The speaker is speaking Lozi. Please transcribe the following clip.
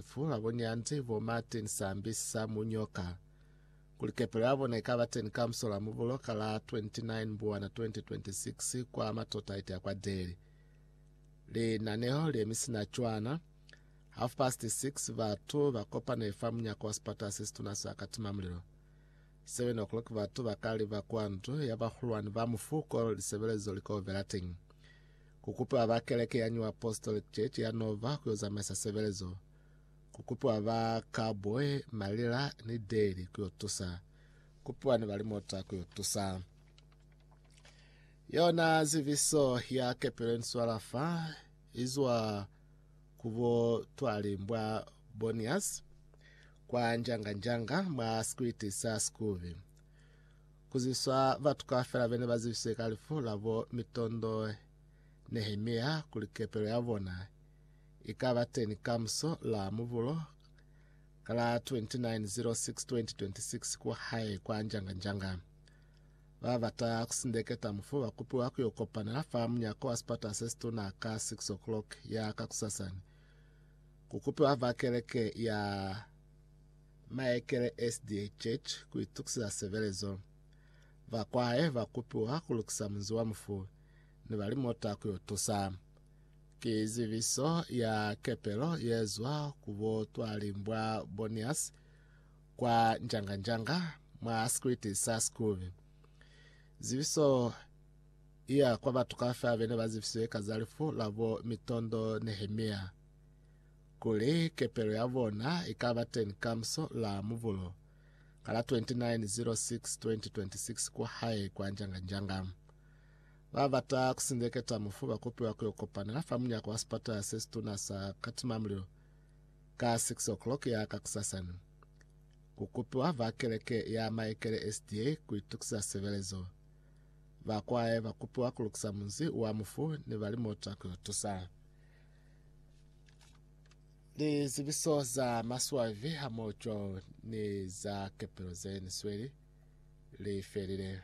Fu ha bo Nyanzi, bo Martin Sambi sa mu nyoka kuli kepelo ya bona ikaba teni ka musola mubulo ka la 29 Mbuwana 2026 kwa Matrotaite ya kwa Deli. Linaneho le mi sina cwana. Half past 6 batu ba kopane fa munyako wa sipata se situna sa katima mulilo. 7 o'clock batu ba ka liba kwa ndu ya bahulwani ba mufuko lisebelezo li ko vela teñi. Ku kupiwa ba Keleke ya New Apostolic Church ya Nova ku yo zamaisa sebelezo. Ku kupiwa ba Cowboy, Malila, ni Daly ku yo tusa. Ku piwa ni balimota ku yo tusa. Yona ziviso ya kepelo inswala fa izwa ku bo Twalimbwa Bonias kwa Njanga Njanga mwa sikwiti sa Sikubi. Ku ziswa batu kaufela bene ba zibiswe ka lifu la bo mitondo Nehemia kuli kepelo ya bona i ka ba teni kamuso la mubulo ka la 29.06.2026 ku hae kwa Njanga-Njanga. Ba bata ku sindeketa mufu ba kupiwa ku yo kopana fa munyako wa sipata se situna ka 6 o'clock ya kakusasani. Ku kupiwa fa keleke ya Maekele SDA Church ku itukisiza sebelezo. Ba kwahe ba kupiwa ku lukisa munzi wa mufu ni ba limota ku yo tusa. Ki zibiso ya kepelo ye zwa ku bo Twalimbwa Bonias kwa Njanga-Njanga mwa sikwiti sa Sikubi. Zibiso iya kwa batu kaufela bene ba zibisiwe ka za lifu la bo Mitondo Nehemia. kuli kepelo ya bona i ka ba teñi kamuso la Mubulo ka la 29.06.2026 kwa hae kwa Njanganjanga. Ba bata ku sindeketa mufu ba kopiwa ku yo kopanela fa munyako wa sipatala se situna sa Katimamulilo ka 6 o'clock ya kakusasani. Ku kupiwa ba keleke ya Maekele SDA ku itukisa sebelezo. Ba kwae ba kupiwa ku lukisa munzi wa mufu ni ba limota ku yo tusa. Lizibiso za maswabi hamoho ni za kepelo ze ni sweli li felile.